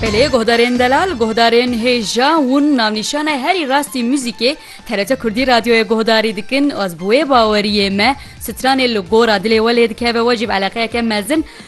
Belê guhdarên delal guhdarên hêja hûn navnîşana herî rastî muzîkê TRT Kurdî radyoyê guhdarî dikin ez bi wê baweriyê me stranê li gora dilê we lê dikeve wecîb eleqeyeke mezin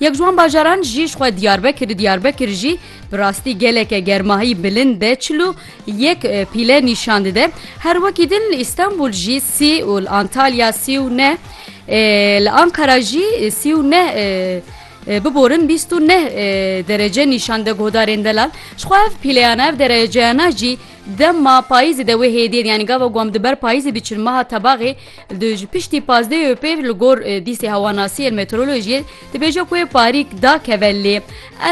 Yek ji wan bajaran jî ji xwe Diyarbekir Diyarbekir jî bi rastî geleke germahî bilind e çil û yek pîle nîşan dide. Her wekî din li Îstanbul jî sî û li Antalya sî û neh ê li Anqara jî sî û neh ê biborin bîst û neh ê derece nîşan de guhdarên delal. Ji xwe ev pîleyana ev dereceyana jî dema payîzê de wê hêdiyên yanî gava ku em di ber payîzê diçin meha tebaxê Di ji piştî pazdeh ê pêv li gor dîsê hewanasî yên meteorolojiyê dibêje ku wê parîk dakeve lê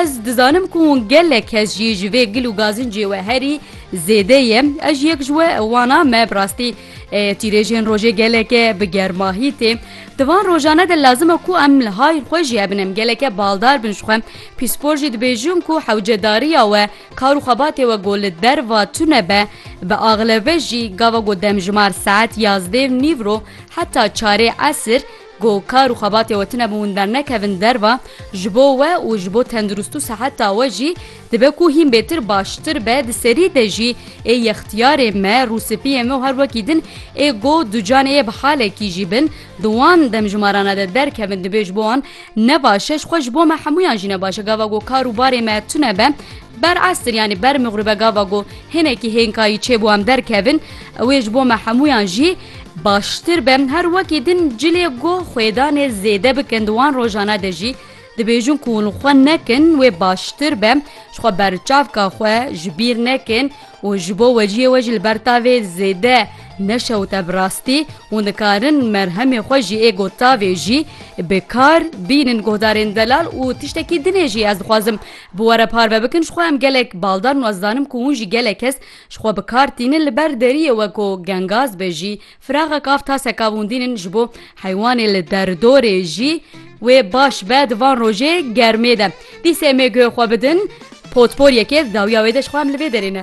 ez dizanim ku hûn gelek kes jî ji vê gil û gazincê we herî zêde ye ez ji yek ji we wan a me bi rastî çîrêjên rojê geleke bi germahî tê di van rojane de lazim e ku em li hayr xwe jî hebin em geleke baldar bin ji xwe pîspor jî dibêjin ku hewcedariya we Kar û xebatê we ku li derva tune be, bi axleve jî gava ku demjimar saet yazdê û nîv ro heta çarê esir ku kar û xebatê we tune bi hûn dernekevin derva, ji bo we û ji bo tenduristî û seheta we jî dibe ku hîn bêtir baştir be. Di serî de jî ê yextiyarên me, rûspiyên me û her wekî din ê ku ducanê yê bi halekî jî bin, Di wan demjimarana de derkevin dibê ji bo wan ne baş e, ji xwe ji bo me hemûyan jî ne baş e. Gava ku kar û barê me tune be, ber estir yanî ber mixribe gava ku hinekî hênkayî çêbû em derkevin, ew ê ji bo me hemûyan jî baştir be. Her wekî din cilê goh xwêdanê zêde bikin di wan rojana de jî Dibêjin ku hûn xwe nekin wê baştir be, ji xwe berçavka xwe ji bîr nekin û ji bo weciyê we jî li ber tavê zêde neşewite bi rastî hûn dikarin merhemê xwe ji êgo tavê jî bi kar bînin guhdarên delal û tiştekî dinê jî ez dixwazim bi we re parve bikin ji xwe em gelek baldar û ez dizanim ku hûn jî gelek kes ji xwe bi kar tînin li ber deriyê we ku gengaz be jî Firaxa kav taseka vûndînin ji bo heywanê li derdorê jî wê baş be di van rojê germê de. Dîsê em ê guhê xwe bidin potporyekê di dawiya wê de ji xwe em li vê derê ne.